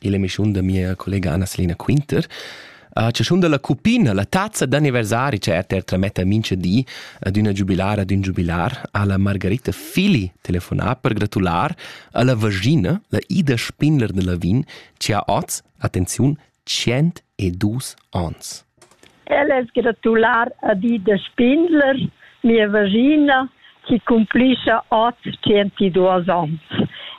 illa emischiun da mia collega Annaselina Quinter. A chaschun da la cuppina, la tazza d'anniversari cha RTR trametta mincha di ad üna giubilara d'ün giubilar, ha la Margarita Fili telefonà per gratular a la vagina, la Ida Spindler da Lavin, chi ha oz, attenziun, 102 ans. El es gratular a Dida Spindler, mia vagina, chi cumplischa hoz tschentisduos ons.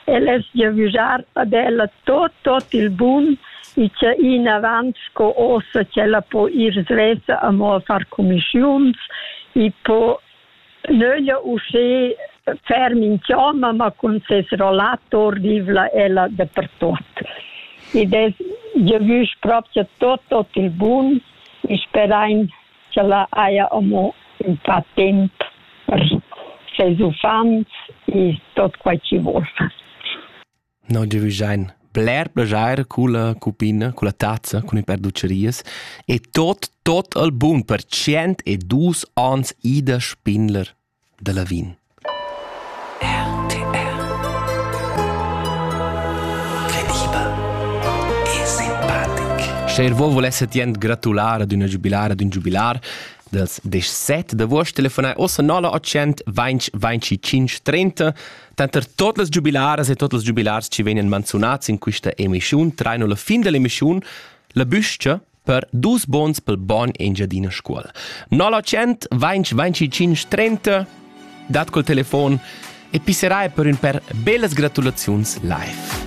El es giavüschar ad ella tot, tot il bun e cha in avant sco ossa ch'ella po ir svessa amo a far cumischiuns e po Nöglia uschè fer minch'oma, ma cun ses rollator vivla ella dapertuot. Id es giavüsch propcha tuot, tuot il bun e sperain ch'ella haja amo ün pa temp per seis uffants e tuot quai chi voul fer. No giavüschain bler plaschair culla cuppina, culla tazza cun il per dutscherias e tot, tot al bun per tschient e dus ans Ida Spindler da Lavin. RTR Crediba e simpatic. Scher vo volesse tient gratular ad una giubilar ad un giubilar das 17 d'agost telefonai ossa 9 800 20 25 30 Tanter tot las giubilaras e tot els giubilars chi vegnan manzunats in quista emischiun traino la fin dell'emischiun la büscha per dus bons pel buon Engiadina Scuol. 0900 20 25 30 dat col telefon e pisserai per ün per bellas gratulaziuns live.